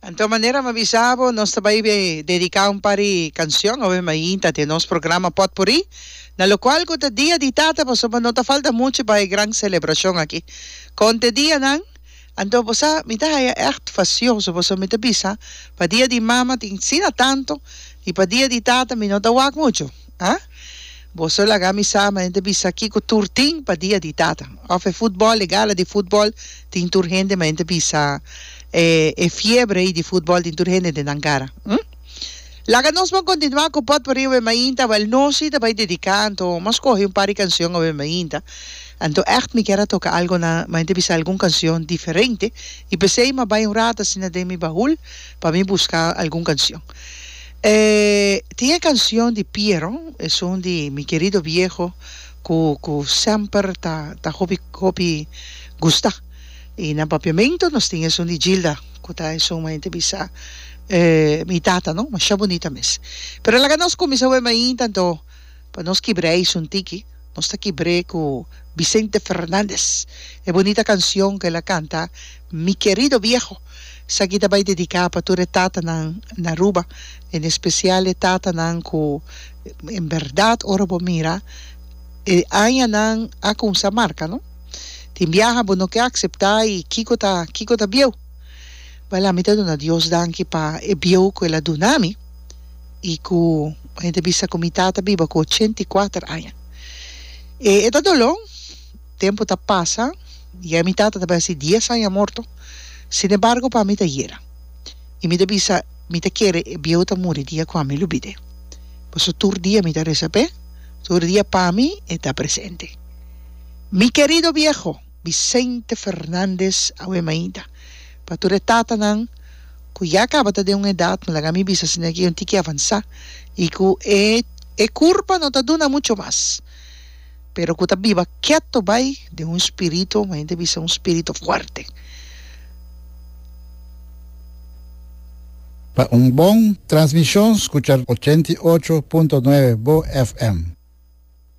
Anto manera m'a bisa bo, nos ta bai dedica un par di cancion awe m'a yinta den nos programa Potpourri, na locual cu ta Dia di Tata, pasobra no ta falta mucho pa e gran celebracion aki. Con t'e dianan? Anto bo sa, mi ta haya echt facioso, pasobra mi ta bisa, pa Dia di Mama tin sina tanto, y pa Dia di Tata mi no ta wak mucho. Ha? Bo so laga mi sa ma hende bisa kiko tur tin pa dia di tata. Of e futbol, e gala di futbol tin tur hende ma hende bisa e e fiebre ei di futbol tin tur hende den nan kara. Hm? Laga nos bon kontinuá ku potporí awe mainta, wèl nos si ta bai dediká anto mos kohe un par di kansion awe mainta. Anto ègt mi kier a toka algu na ma hende bisa algun kansion diferente i p'esei m'ai bai un rato asina den mi bahul pa mi buska algun kansion. E tin e cancion di Piero, esun di Mi querido viejo cu cu semper ta ta hopi hopi gusta. Y na papiamento nos tin esun di Gilda cu ta esun ma hende bisa mi tata no, masha bunita mes. Pero laga nos cuminsa wema ainda do. Pa nos kibr'é eisun tiki, nos ta kibr'é ku Vicente Fernandez, e bunita kansion ku el a kanta Mi kerido viejo. Esaki ta bai dediká pa tur e tatanan na Aruba, en espesial e tatanan ku en bèrdat ora bo mira e añanan a kumsa marka, no? Tin biaha bo no ke akseptá i kiko ta kiko ta bieu. Bala mi ta duna Dios danki pa e bieu ku el a dunami. i ku mi ta bisa ku mi tata biba ku ochenta i kuater aña. E e ta dolo, tempu ta pasa, ya mi tata ta bai hasi dies aña morto, sinembargo pa mi ta yera. I mi ta bisa mi ta kere e bieu ta muri dia ku ami lubi d'e. Paso tur dia mi ta resa p'e, tur dia pa mi e ta presente. Mi kerido bieho Vicente Fernandez Awemainda. Pa tur e tatanan ku ya kaba ta den un edat, mi laga mi bisa si nan ke yon tiki avansá i ku e e kurpa no ta duna mucho mas, pero ku ta biba keto bai den un spirito, mayormente ta bisa un spirito fuerte. Pa un bon transmishon skucha ochenta i ocho punto nuebe Bo FM.